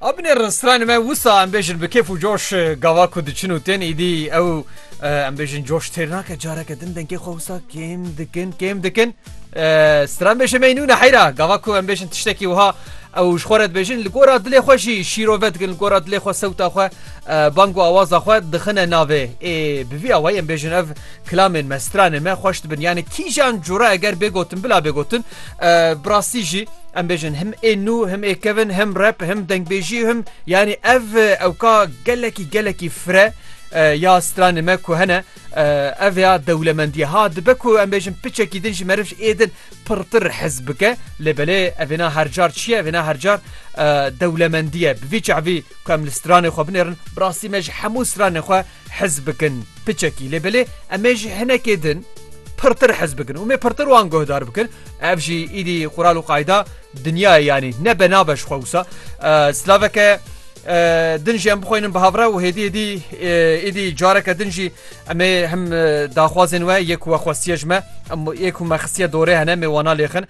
Abinê restranê me wisa em bêjin bi kêf û coş gava ku diçin û tên îdî ew em bêjin coş têr nake careke din dengê xwe wisa kêm dikin kêm dikin stran bêje meynûne heyra gava ku em bêjin tiştekî wiha ew ji xwe re dibêjin li gora dilê xwe jî şîrove dikin li gora dilê xwe sewta xwe bang û awaza xwe dixine navê ê bi vî awayî em bêjin ev kilamên me stranê me xweş dibin yani kîjan cure eger bêgotin bila bêgotin Bi rastî jî em bêjin him ê nû him ê kevin him rep him dengbêjî him yanî ev ewka gelekî gelekî fre ya stranê me ku hene ev ya dewlemendiye ha dibe ku em bêjin piçekî din ji meriv ê din pirtir hez bike lê belê evêna hercar çiye evêna hercar dewlemendiye bi vî çavî ku em li stranê xwe binêrin rastî me ji hemû stranê xwe hez bikin piçekî lê belê em ê ji hinekê din pirtir hez bikin û mê pirtir wan guhdar bikin ev jî îdî xural û qayda dinyayê yanî ne be nabe ji xwe wisa slaveke din jî em bixwînin bi havre û hêdî hêdî êdî careke din jî em ê him daxwazên we yek we xwestiye ji me em yek hû me xistiye dorê hene mê wana lêxin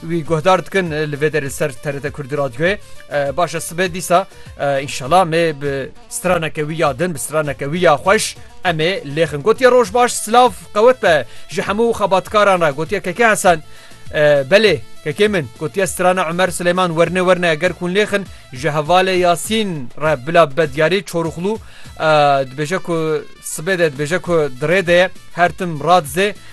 Wî guhdar dikin li vê derê ser TRT Kurdî Radyoyê baş e sibê dîsa înşala me bi straneke wî ya din bi straneke wî ya xweş em ê lêxin gotiye roj baş silav qewet be ji hemû xebatkaran re gotiye keke hesen belê kekê min gotiye strana Umer Silêman werne werne eger kun lêxin ji hevalê Yasîn re bila be diyarî çorixlû dibêje ku sibê de dibêje ku dirê de her tim radizê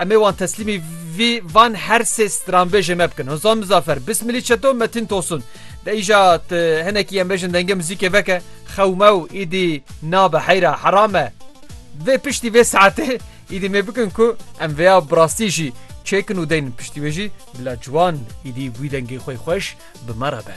Em ê wan teslîmî vî van her sê stranbêjê me bikin. Hozan Mizafer, Bismilî Çeto, Metin Tosun. De îja hinekî em bêjin dengê muzîkê veke xewmew îdî nabe heyra herame. Vê piştî vê saetê îdî mê bikin ku em vêya bi rastî jî çêkin û deyn piştî wê jî bila ciwan îdî wî dengê xwe xweş bi me re be.